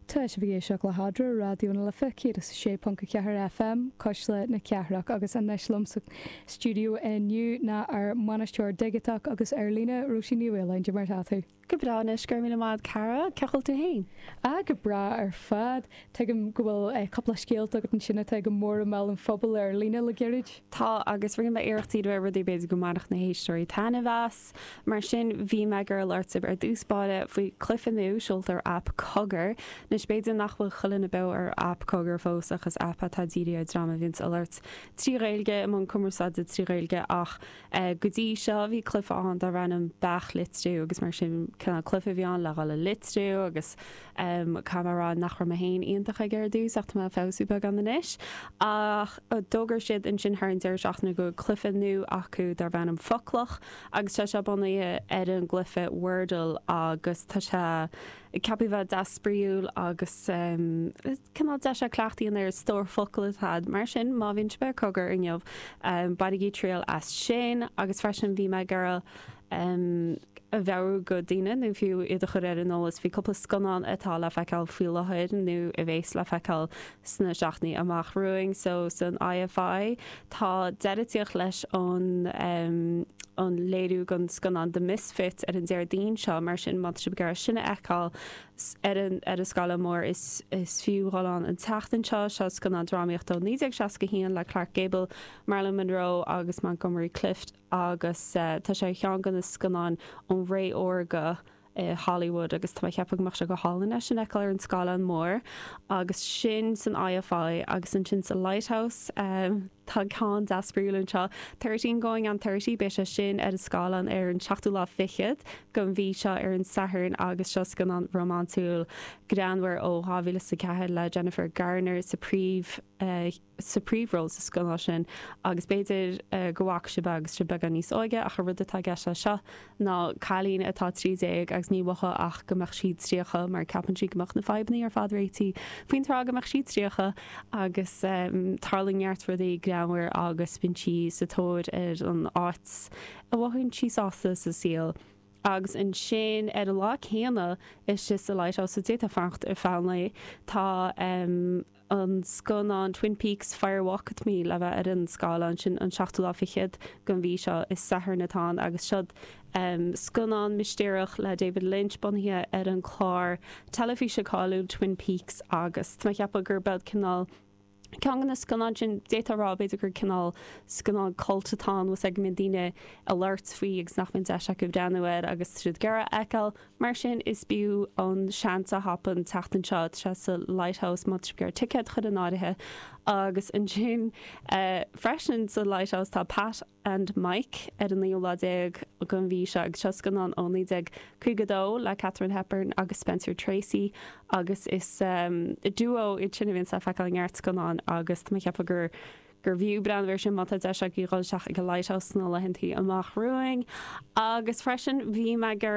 Tá sibh ag éisteacht le Cara, Raidió na Life 106.4 FM, Cuisle na Cathrach agus anois liom sa studio inniu ná ár mbainisteoir digiteach agus ar líne, Róisín Ní Mhaoláin, Dé mar atá tú. Go breá anois, go raibh míle maith a'd Cara, cén chaoi bhfuil tú fhéin? Ah go breá ar fad, tuigim go bhfuil cúpla scéalta agat ansin atá go mór i mbéal an phobail ar líne le gairid? Tá agus rinne mé iarracht dul le rudaí b'fhéidir go mbainfeadh na héisteoirí taitneamh as. Mar sin, bhí mé ag iarraidh labhairt libh ar dtús báire faoi cluiche nua seolta ar aip cogar. Anois, b'fhéidir nach bhfuil chuile dhuine beo ar aip cogar fós ach is aip atá dírithe ar dream a bhíonns a labhairt trí Ghaeilge, i mbun cumarsáide trí Ghaeilge ach go dtí seo, bhí cluiche ann darbh ainm Beach Litriú agus mar sin, cineál cluiche a bhí ann le dhul le litriú agus. Caithfidh mé a rá nach raibh mé féin iontach aige ar dtús ach tá mé ag feabhsú beagán anois. Ach d'fhógair siad ansin thar an deireadh seachtaine go bhfuil cluiche nua acu darb ainm Foclach agus tá sé bunaithe ar an gcluiche Wordle agus tá sé ceaptha bheith deas spraíúil agus cineál deis é cleachtadh a dhéanamh ar stór focal a'd. Mar sin, má bhíonn sibh ar cogar inniu, bainigí triail as sin agus freisin bhí mé ag iarraidh. a mheabhrú go daoine nó fiú iad a chur ar an eolas faoi cúpla scannán atá le feiceáil faoi láthair nó a bheas le feiceáil sna seachtainí amach romhainn. So, san IFI, tá deireadh ag tíocht leis an, an léiriú den scannán The Misfits ar an Déardaoin seo, mar sin má tá sibh ag iarraidh sin a fheiceáil, ar an, ar an scáileán mór, is, is fiú dhul ann an tseachtain seo. Seo scannán drámaíochta ó 1961 le Clark Gable, Marilyn Monroe agus Montgomery Clift. agus tá sé ar cheann de na scannáin ón ré órga i Hollywood agus tá mé ag ceapadh go mbeadh sé go hálainn é sin a fheiceáil ar an scáileán mór agus sin san IFI agus ansin sa Lighthouse tá ceann deas spraíúil anseo, Thirteen Going on Thirty, beidh sé sin ar an scáileán ar an seachtú lá fichead den mhí seo, ar an Satharn agus seo scannán rómánsúil greannmhar ó 2004 le Jennifer Garner sa phríomh. sa phríomhról sa scannán sin agus b'fhéidir go bhfaca sibh agus sibh beagán níos óige ach an rud atá i gceist leis seo ná cailín atá 13 agus ba mhaith léi go mbeadh sí 30 mar ceapann sí go mbeadh na fadhbannaí ar fad réitithe faoin tráth go mbeadh sí 30 agus tarlaíonn neart rudaí greannmhar agus bíonn sí sa tóir ar an áit a mbeadh sí sásta sa saol agus ansin ar an lá céanna is sa lighthouse so d'fhéadfá fanacht ar feadh an lae tá. an scannán Twin Peaks, Fire Walk With Me le bheith ar an scáileán. Sin an seachtú lá fichead den mhí seo, is Satharn atá ann, agus seo'd scannán mistéireach le David Lynch bunaithe ar an chlár teilifíse cáiliúil Twin Peaks agus tá mé a cheapadh gurb shod cineál ceann de na scannáin sin, d'fhéadfá a rá b'fhéidir gur cineál scannán cult atá ann, is go mbíonn daoine a labhairt faoi agus nach mbíonn deis acu breathnú air agus siad ag iarraidh é a fheiceáil. Mar sin is b'fhiú an seans a thapú an tseachtain seo sa sa Lighthouse más féidir ticéad a chur in áirithe agus ansin freisin sa Lighthouse tá Pat and Mike ar an naoú lá déag den mhí seo agus seo scannán ó 1952 le Katharine Hepburn agus Spencer Tracy agus is duo iad sin a bhíonns le feiceáil i ngearrscannáin agus tá mé ag ceapadh gur gurbh fhiú breathnú ar sin má tá deis agaibh dhul isteach ag an Lighthouse sna laethanta amach romhainn. Agus freisin, bhí mé ag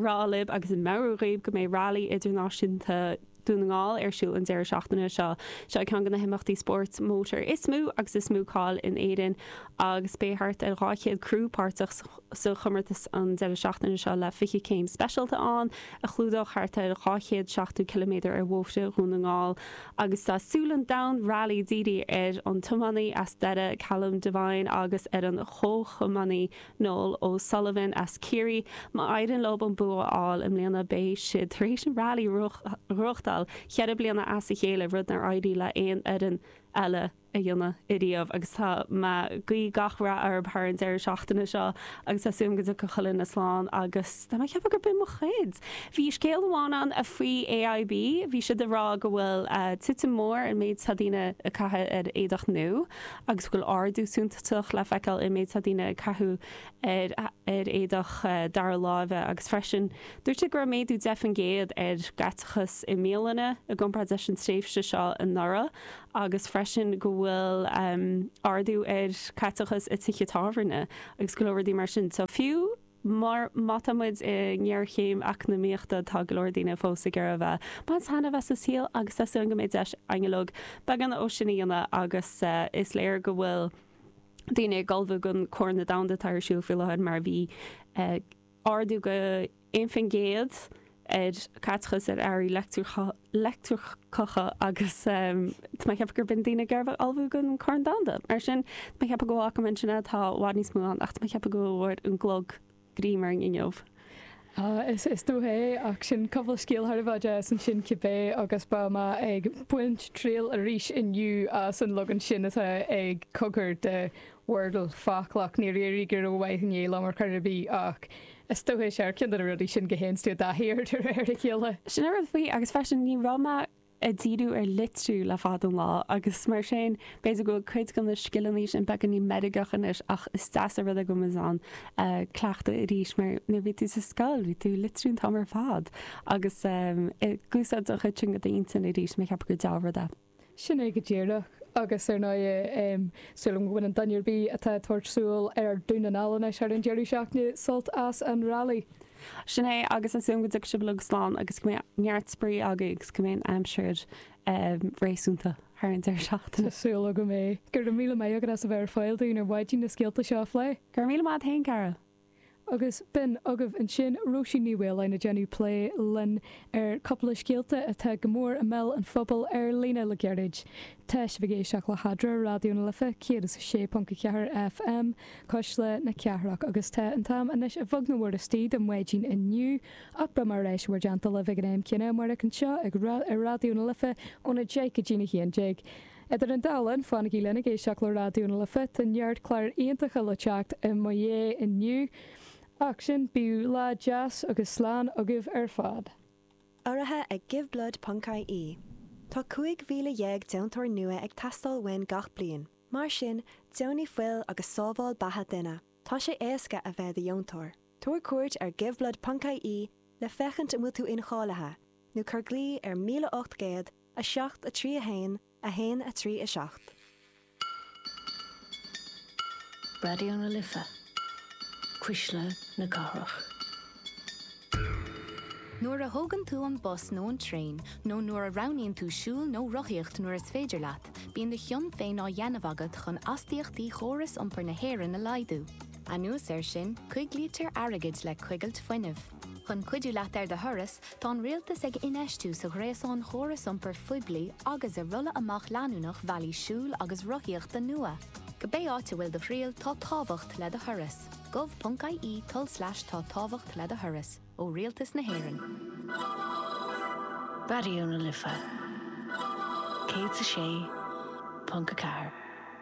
rá libh agus ag meabhrú dhaoibh go mbeidh Rally Idirnáisiúnta Dhún na nGall ar siúl an deireadh seachtaine seo. Seo ceann de na himeachtaí spóirt mótair is mó agus is mó cáil in Éirinn agus beidh thart ar 200 criú páirteach sa chomórtas an deireadh seachtaine seo le 20 céim speisialta ann a chlúdóidh thart ar 270 ciliméadar ar bhóithre Dhún na nGall. Agus tá súile an domhain Rally dírithe ar an tiománaí as Doire Callum Devine agus ar an chomhthiománaí Noel O'Sullivan as Ciarraí. Má éiríonn leo an bua a fháil i mbliana beidh siad tar éis an Rally a bhuachtáil cheithre bliana as a chéile, rud nár éirigh le haon fhoireann eile a dhéanamh ariamh agus tá mé ag guí gach rath orthu thar an deireadh seachtaine seo agus tá súil agam go dtiocfaidh chuile dhuine slán agus tá mé ag ceapadh gur b'in mo chuid! Bhí scéal amháin ann faoi AIB, bhí siad ag rá go bhfuil titim mór sa méid atá daoine ag caitheamh ar éadach nua agus go bhfuil ardú suntasach le feiceáil sa méid atá daoine ag caitheamh ar éadach dara láimhe agus freisin dúirt siad go raibh méadú 10% ar chaiteachas i mbialanna i gcomparáid leis an tréimhse seo anuraidh. agus freisin go bhfuil ardú ar chaiteachas i tithe tábhairne agus go leor rudaí mar sin. So fiú má tá muid i ngéarchéim eacnamaíochta tá go leor daoine fós ag iarraidh a bheith ag baint taitneamh as a saol agus tá súil agam go mbeidh deis againn uilig beagán dó sin a dhéanamh agus is léir go bhfuil daoine ag ullmhú don Chorn Domhanda atá ar siúl faoi láthair mar bhí ardú 21 faoin gcéad ar chaiteachas ar earraí leictreacha agus tá mé ag ceapadh gur b'in daoine go raibh ag ullmhú don Chorn Domhanda. Mar sin, tá mé ag ceapadh go bhfágfaidh mé ansin é, tá i bhfad níos mó ann ach tá mé ag ceapadh go bhfuair an clog greim orm inniu. Is dóigh é, ach sin cúpla scéal thar a bheith deas ansin cibé agus beidh mé ag baint triail arís inniu as an leagan sin atá ag Cogar de Wordle, Foclach, níor éirigh go rómhaith inné liom ar chor ar bith, ach is dócha gur ceann de na rudaí sin go dtéanns tú i dtaithí air de réir a chéile. Sin an rud faoi, agus freisin ní raibh mé ag díriú ar litriú le fada an lá, agus mar sin b'fhéidir go bhfuil cuid de na scileanna sin beagáinín meirgeach anois, ach is deas an rud é go bhfuil mé in ann cleachtadh arís, mar nuair a bhí tú sa scoil bhí tú ag litriú an t-am ar fad, agus ag úsáid an chuid sin de d'intinn arís, mar cheapfainn gur deá-rud é. Sin é go díreach. Agus ar ndóigh, sílim go mbaineann duine ar bith atá ag tabhairt siúl ar Dhún na nGall anois thar an deireadh seachtaine sult as an rally. Sin é, agus ansin go dtiocfaidh sibh uilig slán agus go mbeidh neart spraoi agaibh agus go mbeidh an aimsir réasúnta thar an deireadh seachtaine. Tá súil go mbeidh. Go raibh míle maith agat as a bheith ar fáil dúinn ar maidin leis na scéalta seo a phlé. Go raibh míle maith agat féin, a chara. Agus b'in agaibh ansin Róisín Ní Mhaoláin ag déanamh plé linn ar chúpla scéalta atá go mór i mbéal an phobail ar líne le gairid. Tá sibh ag éisteacht le hAdhradh, Raidió na Life 106.4 FM, Cuisle na Cathrach, agus tá an t-am anois beagnach istigh don mhaidin inniu, ach beidh mé ar ais in bhur dteannta libh ag an am céanna amárach anseo ar Raidió na Life óna deich go dtí a haon déag. Idir an dá linn, fanaigí linn ag éisteacht le Raidió na Life, tá neart cláir iontacha le teacht i mo dhiaidh inniu. Ach go dtí sin, bíodh lá deas agus slán agaibh ar fad. Urraithe ag Giveblood ponc ie Tá 15,000 deontóir nua ag teastáil uainn gach bliain. Mar sin, deonaigh fuil agus sábháil beatha duine. Tá sé éasca a bheith i do dheontóir. Tabhair cuairt ar giveblood ponc ie le féachaint an bhfuil tú incháilithe, nó cuir glaoch ar 1800. 7, 3, 1, 1, 3, 7. Raidió na Life, cuisle na cathrach. Nuair a thógann tú an bus nó an traein, nó nuair a roghnaíonn tú siúl nó rothaíocht nuair is féidir leat, bíonn do chion féin á dhéanamh agat chun astaíochtaí chóras iompair na hÉireann a laghdú. Anuas air sin, coiglítear airgead le coigilt fuinnimh. Chun cuidiú leat ar do thuras, tá an Rialtas ag infheistiú sa ghréasán chóras iompair phoiblí agus i rolladh amach leanúnach bhealaí siúil agus rothaíochta nua. Cibé áit a bhfuil do thriall, tá tábhacht le do thuras. gov.ie tulslais tá tábhacht le do thuras. Ó Rialtas na hÉireann. Raidió na Life 106.4.